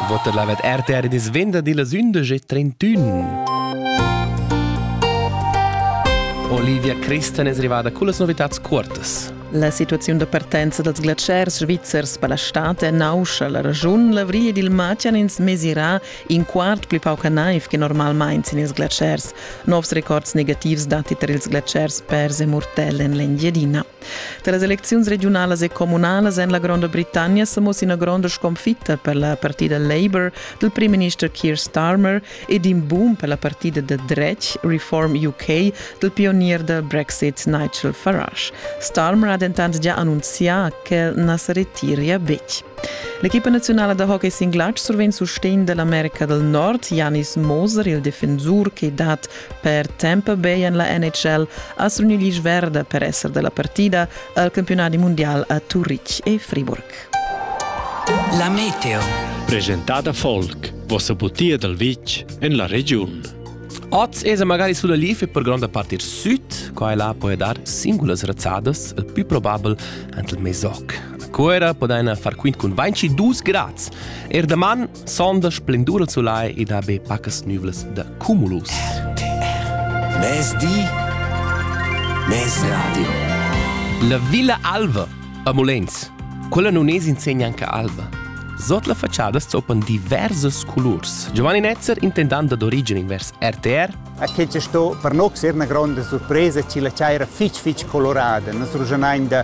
Votta la RTR dis venderdi las 11.31. Olivia Christen es rivada con las novitats cuortas. La situaziun da partenza dals glatschers svizzers per la stat è nauscha. La ragiun l'avrì ed il matgan ins mesirà in quart pli pauca naiv che normalmain sin ils glatschers. Novs records negativs dati tar ils glatschers pers e murtell en l'Engiadina. Da las elecziuns regiunalas e communalas en la Gronda Britannia sa mussa ina gronda sconfitta per la partida Labour dal primminister Keir Starmer ed in boom per la partida da dretg Reform UK dal pionier da Brexit Nigel Farage. Starmer ha dentant già annunzià che na sa retiria betg. L'equipa nazionala da hockey singlatg survegn sustegn dall'America dal Nord. Janis Moser, il defensur che dat Per tempo beien la NHL ha suni l'isch verda per esser della partida al campionati mondial a Turitg e Friburg. La meteo. Presentada Folk, vossa butia dal vitg en la regiun. Oz esa magari sulla lif e per gronda part ir süd, qua e là puoi dar singulas razzadas, il più probabel ant il mesoc. A Cuera podaina far quint cun vainci dus grads. Er daman Sonda splendura il sulai ed ha be pacas nüvlas da cumulus. Mezdi, mezradio. La Villa Alva a Molens. Quella non es insegna anche alba. Sot la facciada zopan diversas colurs. Giovanni Netzer, intendant ad origine invers RTR. A che ci sto per noi una grande sorpresa, ci la c'era fitch fitch colorada. Nos rugenain da